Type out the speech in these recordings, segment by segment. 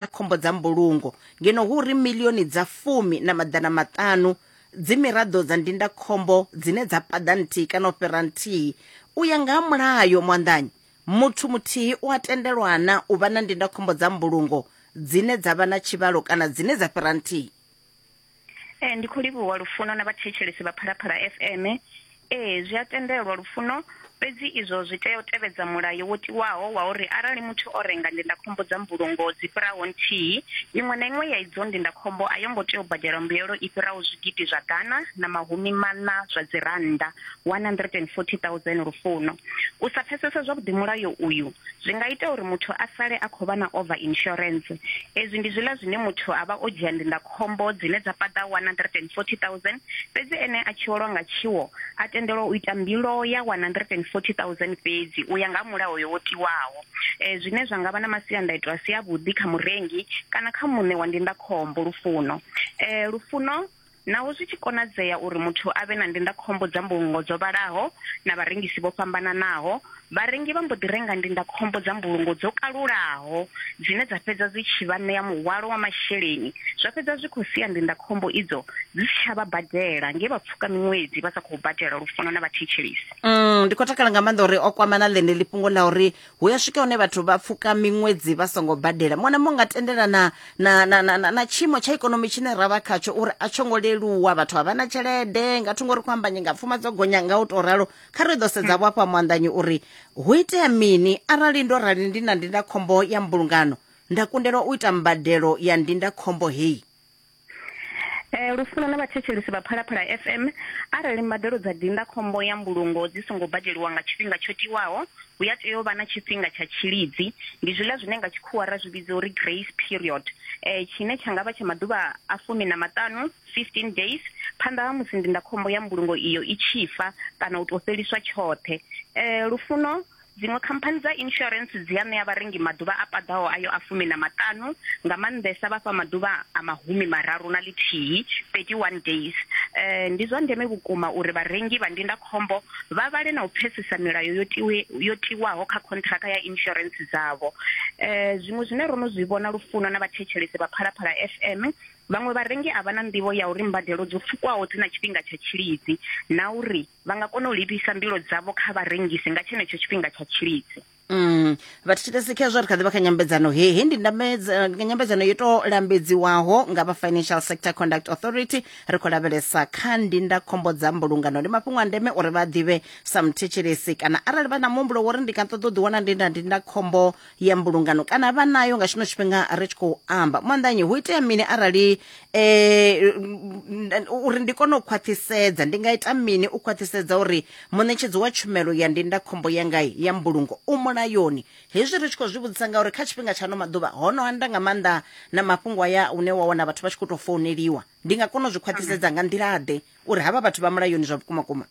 na khombo dza mbulungo ngeno hu uri milioni dza fumi na maḓana maṱanu dzi miraḓo dza ndindakhombo dzine dza paḓa nthihi kana u fhira nthihi u ya nga ha mulayo muanḓanyi muthu muthihi u a tendelwana u vha na ndindakhombo dza mbulungo dzine dza vha na tshivhalo kana dzine dza fhira nthihi Ee ndi khou livhuwa lufuno na vhathetshelesi vha Phalaphala FM. Ee zwi a tendelwa lufuno, fhedzi izwo zwi tea u tevhedza mulayo wo tiwaho wa uri arali muthu o renga ndindakhombo dza mbulungo dzi fhiraho nthihi, iṅwe na iṅwe ya idzo ndindakhombo a yo ngo tea u badela mbuyelo i fhiraho zwigidi zwa ḓana na mahumi maṋa zwa dzirannda, R140 000. U sa pfesesa zwavhuḓi mulayo uyu Zwi nga ita uri muthu a sale a khou vha na over insurance. Ezwi ndi zwiḽa zwine muthu a vha o dzhia ndindakhombo dzine dza paḓa R140 000, fhedzi ene a tshi welwa nga tshiwo a tendelwa u ita mbilo ya R140 000 fhedzi u ya nga ha mulayo wo tiwaho, zwine zwa nga vha na masiandaitwa a si avhuḓi kha murengi kana kha muṋe wa ndindakhombo. Lufuno. Lufuno Naho zwi tshi konadzea uri muthu a vhe na ndindakhombo dza mbulungo dzo vhalaho na vharengisi vho fhambananaho, vharengi vha mbo ḓi renga ndindakhombo dza mbulungo dzo kalulaho dzine dza fhedza dzi tshi vha ṋea muhwalo wa masheleni zwa fhedza zwi khou sia ndindakhombo idzo dzi si tsha vha badela nge vha pfuka miṅwedzi vha sa khou badela lufuno na vhathetshelesi. Mm, ndi khou takala nga maanḓa uri o kwamana ḽeneḽi fhungo ḽa uri hu ya swika hune vhathu vha pfuka miṅwedzi vha songo badela mona mo nga tendela na na na na, na tshiimo tsha ikonomi tshine ra vha khatsho uri a tsho ngo leluwa vhathu a vha na tshelede nga thungo ri khou amba nyinga pfuma dzo gonya nga u tou ralo kha ri ḓo sedza vho afha muanḓanyi uri hu itea mini arali ndo rali ndi na ndindakhombo ya mbulungano nda kundelwa u ita mbadelo ya ndindakhombo heyi Eh lufuno na vhathetshelisi vha Phalaphala FM arali mbadelo dza dinda khombo ya mbulungo dzi songo badeliwa nga tshifhinga tsho tiwaho hu ya tea u vha na tshifhinga tsha tshilidzi ndi zwiḽa zwine nga tshikhuwa ra zwi vhidza uri grace period eh tshine tsha nga vha tsha maḓuvha a fumi na maṱanu 15 days phanḓa ha musi ndindakhombo ya mbulungo iyo i tshi fa kana u tou fheliswa tshoṱhe eh lufuno Dziṅwe khamphani dza insurance dzi a ṋea vharengi maḓuvha a paḓaho ayo a fumi na maṱanu, nga maanḓesa vha fha maḓuvha a mahumi mararu na ḽithihi, 31 days. Ndi zwa ndeme vhukuma uri vharengi vha ndindakhombo vha vhale na u pfesesa milayo yo tiwe yo tiwaho kha khonṱhiraka ya insurance dzavho. Zwiṅwe zwine ro no zwi vhona Lufuno na vhathetshelesi vha Phalaphala FM, vhaṅwe vharengi a vha na nḓivho ya uri mbadelo dzo pfukwaho dzi na tshifhinga tsha tshilidzi na uri vha nga kona u livhisa mbilo dzavho kha vharengisi nga tshenetsho tshifhinga tsha tshilidzi Mm, vhathetshelesi khezwo ri kha ḓi vha kha nyambedzano he he ndi ndamedza- nyambedzano yo tou lambedziwaho nga vha financial sector conduct authority ri khou lavhelesa kha ndindakhombo dza mbulungano ndi mafhungo a ndeme uri vha ḓivhe sa muthetshelesi kana arali vha na muhumbulo wo ri ndi nga ṱoḓa u ḓiwana ndi na ndindakhombo ya mbulungano kana vha nayo nga tshino tshifhinga ri tshi khou amba mwandanyi hu itea mini arali eh, uri ndi kone u khwaṱhisedza ndi nga ita mini u khwaṱhisedza uri muṋetshedzi wa tshumelo ya ndindakhombo yanga ya mbulungo u mulayoni hezwi ri tshi khou zwi vhudzisa ngauri kha tshifhinga tsha ano maḓuvha ho no anda nga maanḓa na mafhungo aya une wa wana vhathu vha tshi khou tou founeliwa ndi nga kona u zwi khwaṱhisedza nga nḓila-ḓe uri havha vhathu vha mulayoni zwa vhukuma kuma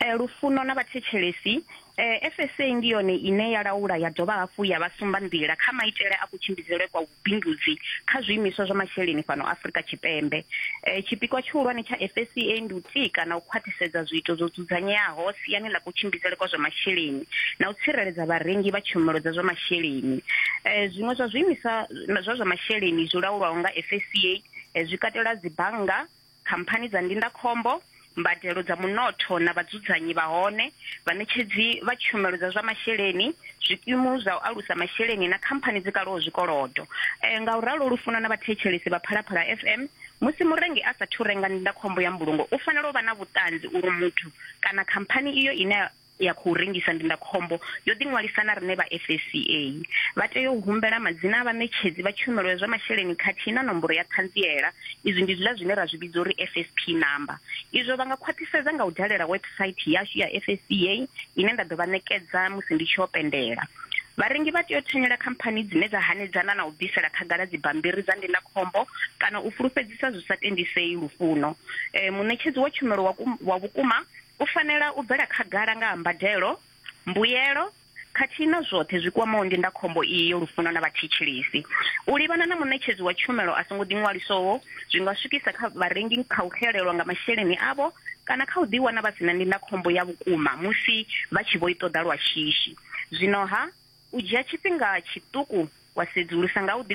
eh, lufuno na vhathetshelesi eh, FSA ndi yone ine ya laula ya dovha hafhu ya vha sumba nḓila kha maitele a kutshimbidzelwe kwa vhubindudzi kha zwiimiswa zwa masheleni fhano Afrika Tshipembe eh, tshipikwa tshihulwane tsha FSA ndi u tika na u khwaṱhisedza zwiito zwo dzudzanyeaho siani ḽa kutshimbidzelwe kwa zwa masheleni na u tsireledza vharengi vha tshumelo dza zwa masheleni eh, zwiṅwe zwa zwiimiswa zwa zwa masheleni zwi laulwaho nga FSA eh, zwi katela dzibannga khamphani dza ndindakhombo, mbadelo dza munotho na vhadzudzanyi vha hone, vhaṋetshedzi vha tshumelo dza zwa masheleni, zwikimu zwa u alusa masheleni na khamphani dzi kalaho zwikolodo. E, nga u ralo lu funwa na vhathetshelesi vha Phalaphala FM. Musi murengi a sa thu renga ndindakhombo ya mbulungo, u fanela u vha na vhuṱanzi uri muthu kana khamphani iyo ine ya khou rengisa ndindakhombo yo ḓiṅwalisa na riṋe vha FSCA. Vha tea u humbela madzina a vhaṋetshedzi vha tshumelo ya zwa masheleni khathihi na nomboro ya ṱhanziela. Izwi ndi zwiḽa zwine ra zwi vhidza uri FSP number. Izwo vha nga khwaṱhisedza nga u dalela website yashu ya FSCA ine nda ḓo vha ṋekedza musi ndi tshi yo pendela. Vharengi vha tea u thanyela khamphani dzine dza hanedzana na u bvisela khagala dzibammbiri dza ndindakhombo kana u fulufhedzisa zwi sa tendisei lufuno. E, muṋetshedzi wa tshumelo wa vhukuma U fanela u bvela khagala nga ha mbadelo, mbuyelo, khathihi na zwoṱhe zwi kwamaho ndindakhombo iyi yo lufuno na vhathetshelesi. U livhana na muṋetshedzi wa tshumelo a songo ḓiṅwalisoho zwi nga swikisa kha vharengi kha u xelelwa nga masheleni avho kana kha u ḓiwana vha si na ndindakhombo ya vhukuma musi vha tshi vho i ṱoḓa lwa shishi. Zwino-ha, u dzhia tshifhinga tshiṱuku wa sedzulusa nga u